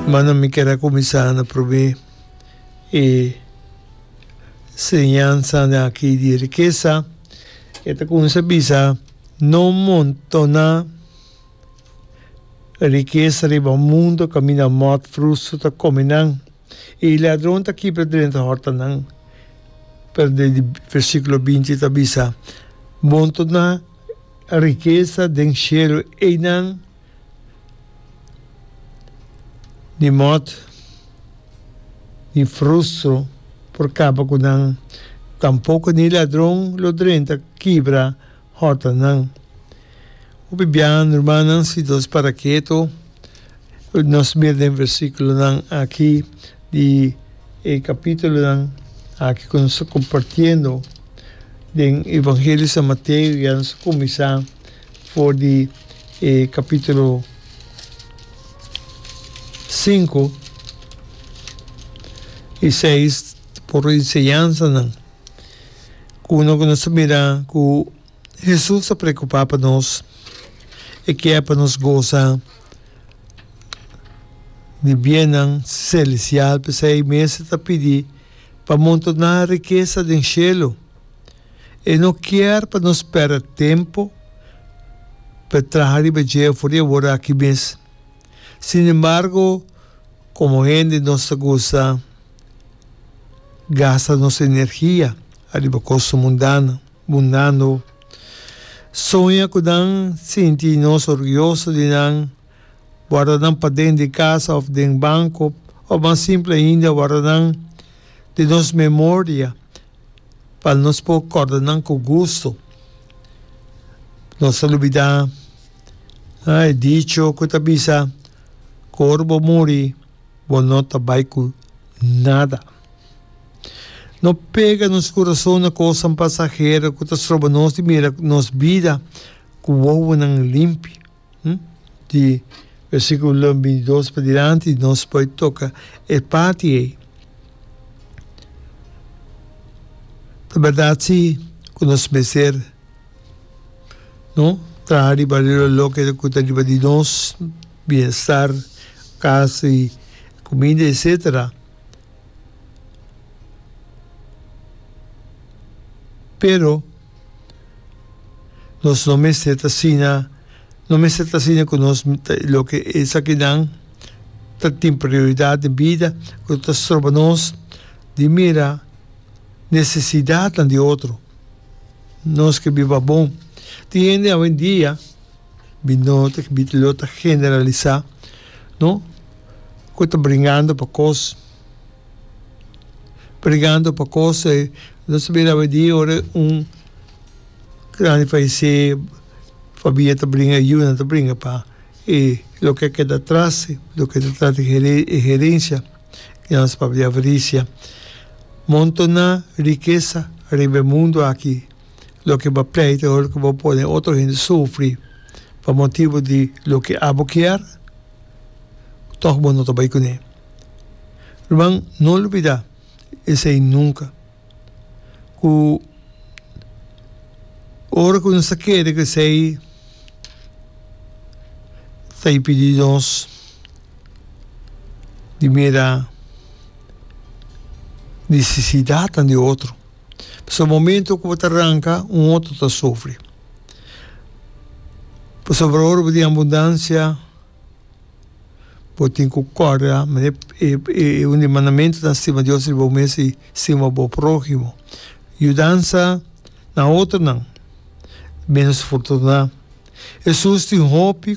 Mana mi kier a kuminsá na promé e enseñansanan akí di rikesa. E ta kuminsá bisa, No montoná rikesa riba mundu kaminda mòt frustu ta kome nan, i ladron ta kipia drenta hòrtanan. Pero den di versíkulo binti ta bisa, Montoná rikesa den shelu einan. di mot mi frustro por kaba ku nan, tampoko ni ladron lo drenta kibra hotanan. Hopi biaha rumannan si nos para ketu, nos mira den versikulonan aki di e kapitulonan aki ku nos ta kompartiendo den Evangelio San Mateo, ya nos a kuminsá. For di e capítulo sinku i seis por e enseñansanan uno ku nos ta mira ku Hesus ta preokupá pa nos, e kier pa nos gosa di biennan selestial, p'esei mester ta pidi pa montoná rikesa den shelu. E no kier pa nos perde tempu pa e traha riba dje for di awor aki mes. Sin embargo, komo hende nos ta gusta gasta nos energia ariba kosnan mundano, mundano. Soña ku nan sinti nos orguyoso di nan. wardanan paden di casa of den banco of mas simple ainda wardanan di nos memoria pa nos por corda nan cu gusto nos ta lubida e dicho cu ta bisa cu ora bo muri bo no ta bay cu nada no pega nos corazon na cosnan pasahero cu ta stroba nos di mira nos bida cu wowonan limpi. di versiculonan bintidos padilanti nos por toca e parti ei. Ta berdad si cu nos mester traha riba loke ta riba di nos, bienestar, casa y comida etcetera, pero. Nos no mester ta asina, no mester ta asina cu nos ta loke esakinan ta tin prioridad den bida cu no ta stroba nos di mira necesidadnan di otro. Nos ke biba bon. Tin hende awendia, mi no ta lo ta generalisa, no, cu ta bringando pa cos. pregando pa cose nos sabi rabi di ora un grandi falece familia ta bringa e yuna ta bringa pa e loke a keda atras loke ta tras di e herencia di nos papia avaricia montona rikesa ariba e mundo aki loke bo a pleita ora ku bo pone otro hende sufri pa motibu di loke abo kier tog bo no ta bai kuné. Lo ban no olbida esei nunka, ku ora ku nos ta kere ku esei ta impidi nos di mira nesesidatnan di otro. Pasobra momento ku bo ta ranka un otro ta sufri. Pasobra ora bo tin abundansia. Bo tin cu core a un di e mandamentu ta stima Dios riba bo mes y stima bo prohimo. Yudansa na otronan menos fortuná. Hesus tin hopi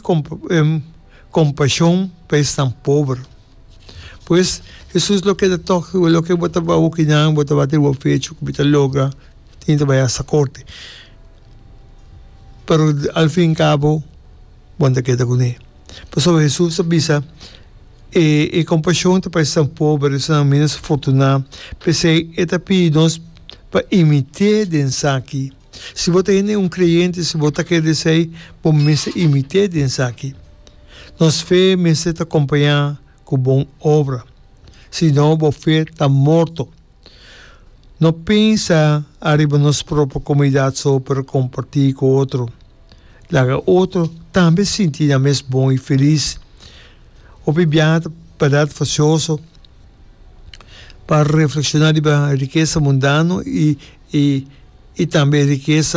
compasion pa esnan pober. Pues Hesus lo keda tok loke bo ta wou cu nan bo ta wak riba bo pecho cu bo ta logra tin ta bay hasta corte. Pero al fin y cabo. bon ta keda kuné. Pasobra Hesus a bisa, E e kompashon ta pa esnan pober, esnan ménos fortuná. P'esei e ta pidi nos pa imit'é den esaki. Si bo ta hende un kreyente, si bo ta kere esei, bo mester imit'é den esaki. Nos fe mester ta kompañá ku bon obra, si no bo fe ta morto. No pensa ariba nos propio comunidad so pero comparti cu otro. Laga otro tambe sinti nan mes bon y feliz. Hopi biaha ta parat facioso pa reflexiona riba e rikesa mundano y tambe e rikesa.